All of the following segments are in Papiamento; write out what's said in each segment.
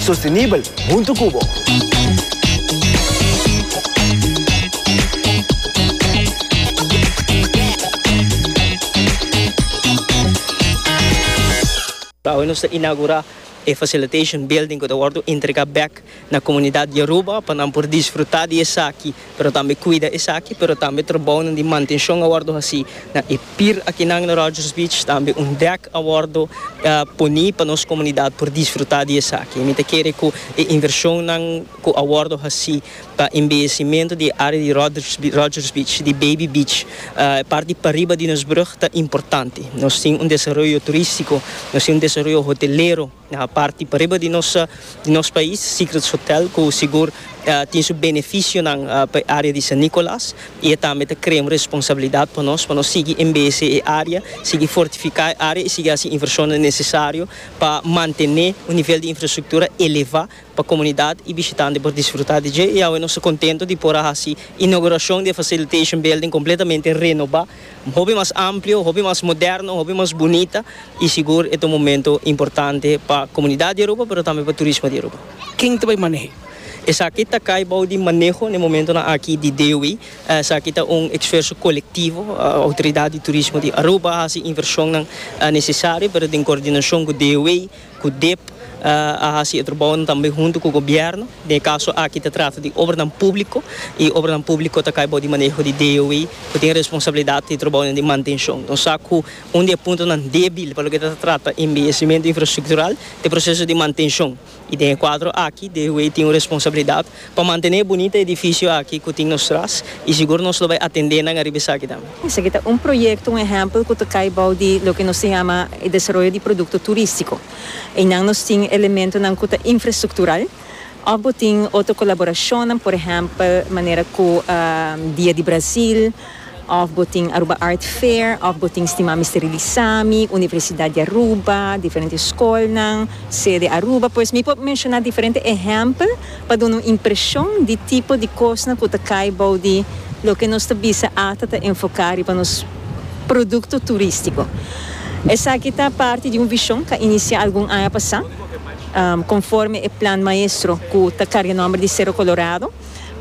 Sostenibel huntu cu bo. Awe nos ta inaugura e facilitation building cu ta wordo entrega bek na comunidad Yoruba pa nan por disfruta di esaki. pero tambe cuida esaki, pero tambe trabounan di mantencion a wordo haci na e pir akinan na Rogers Beach, tambe un dek a wordo poni pa nos comunidad por disfruta di esaki. Mi ta kere cu e inversionnan cu a wordo haci pa embellecimento di e area di Rogers Beach, di Baby Beach, e parti pariba di nos brug ta importante. Nos tin un desaroyo turistico, nos tin un desaroyo hotelero. Na parti pariba di nos di nos pais Secrets Hotel cu sigur tin su beneficionan pa e area di San Nicolas y e tambe ta crea un responsabilidad pa nos pa nos sigui embese e area, sigui fortifica e area y sigui haci inversionnan necesario pa mantene un nivel di infrastructura eleva pa comunidad y bishitante por disfruta di dje y awe nos ta contento di por a haci inauguracion di e facilitation building completamente renoba. hopi mas amplio, hopi mas moderno, hopi mas bunita y sigur e ta un momento importante pa comunidad di Aruba pero tambe pa turismo di Aruba. Ken ta bay manehe? Esaki ta cay bao di maneho n'e momentonan aki di DOE. Esaki ta un exferso colectivo. Autoridad di Turismo di Aruba haci inversionnan necesario pero den coordinacion cu DOE. Codep a haci e trabounan tambe hunto cu gobierno, den e caso aki ta trata di obranan publico y obranan publico ta cay bou di maneho di DOE cu tin responsabilidad di e trabounan di mantencion. Nos sa cu un di e puntonan debil pa loke ta ta trata embellecimento infrastructural ta e proceso di mantencion y den e cuadro aki DOE tin un responsabilidad Pa mantené e bunita edifisio aki ku tin nos tras i sigur nos lo bai atendé nan ariba esaki tambe. Esaki ta un proyekto, un ehèmpel ku ta kai bou di loke nos ta yama e desaroyo di produkto turístiko. Einan nos tin elementonan ku ta infrastruktural òf bo tin otro kolaborashonnan, por ehèmpel manera ku Dia di Brazil, Of bo tin Aruba Art Fair, of bo tin stima mi sterilisa mi, Universidad di Aruba, diferente scolnan, sede Aruba, pues mi por menciona diferente ehempel pa duna un impresion di tipo di cosnan cu ta cay bou di loke nos ta bisa ata ta enfoca riba nos producto turistico. Esaki ta parti di un vision ca inicia algun aña pasa, conforme e plan maestro cu ta carga nomber di Cerro Colorado.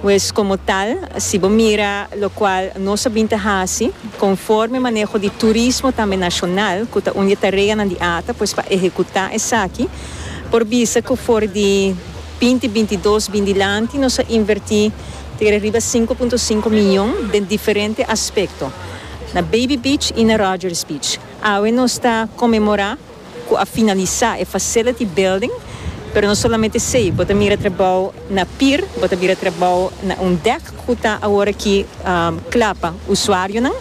Pues como tal, si bo mira locual nos a bin ta haci, conforme maneho di turismo tambe nacional, cu ta un di e tareanan di ata, pues pa ehecuta esaki, por bisa cu for di binti bintidos bin dilanti nos a inverti tere riba sinku punto sinku miyon den diferente aspecto, na Baby Beach y na Rogers Beach. Awe nos ta conmemora. cu a finalisa e facility building, pero no solamente esey, bo ta mira trabao na pier, bo ta mira trabao na un dek cu ta awor aki cla pa usuarionan,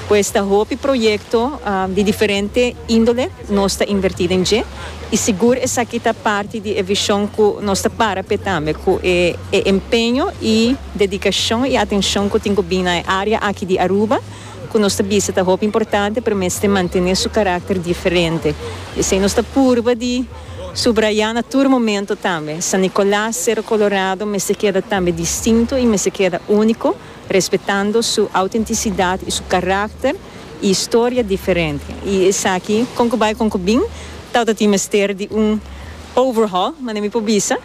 pues ta hopi proyecto di diferente indole nos ta inverti den dje y sigur esaki ta parti di e vision cu nos ta para p'e tambe, cu e empeño y dedicacion y atencion cu tin cu bini na e area aki di Aruba. ku nos ta bisa ta hopi importante pero mester mantené su karakter diferente. Esei nos ta purba di subrayá na tur momento tambe. San Nikolas Sero Kolorado mester keda tambe distinto i mester keda úniko, respetando su outentisidat i su karakter i historia diferente. I esaki kon ku bai kon ku bin tabata tin mester di un overhaul, manera mi por bisa.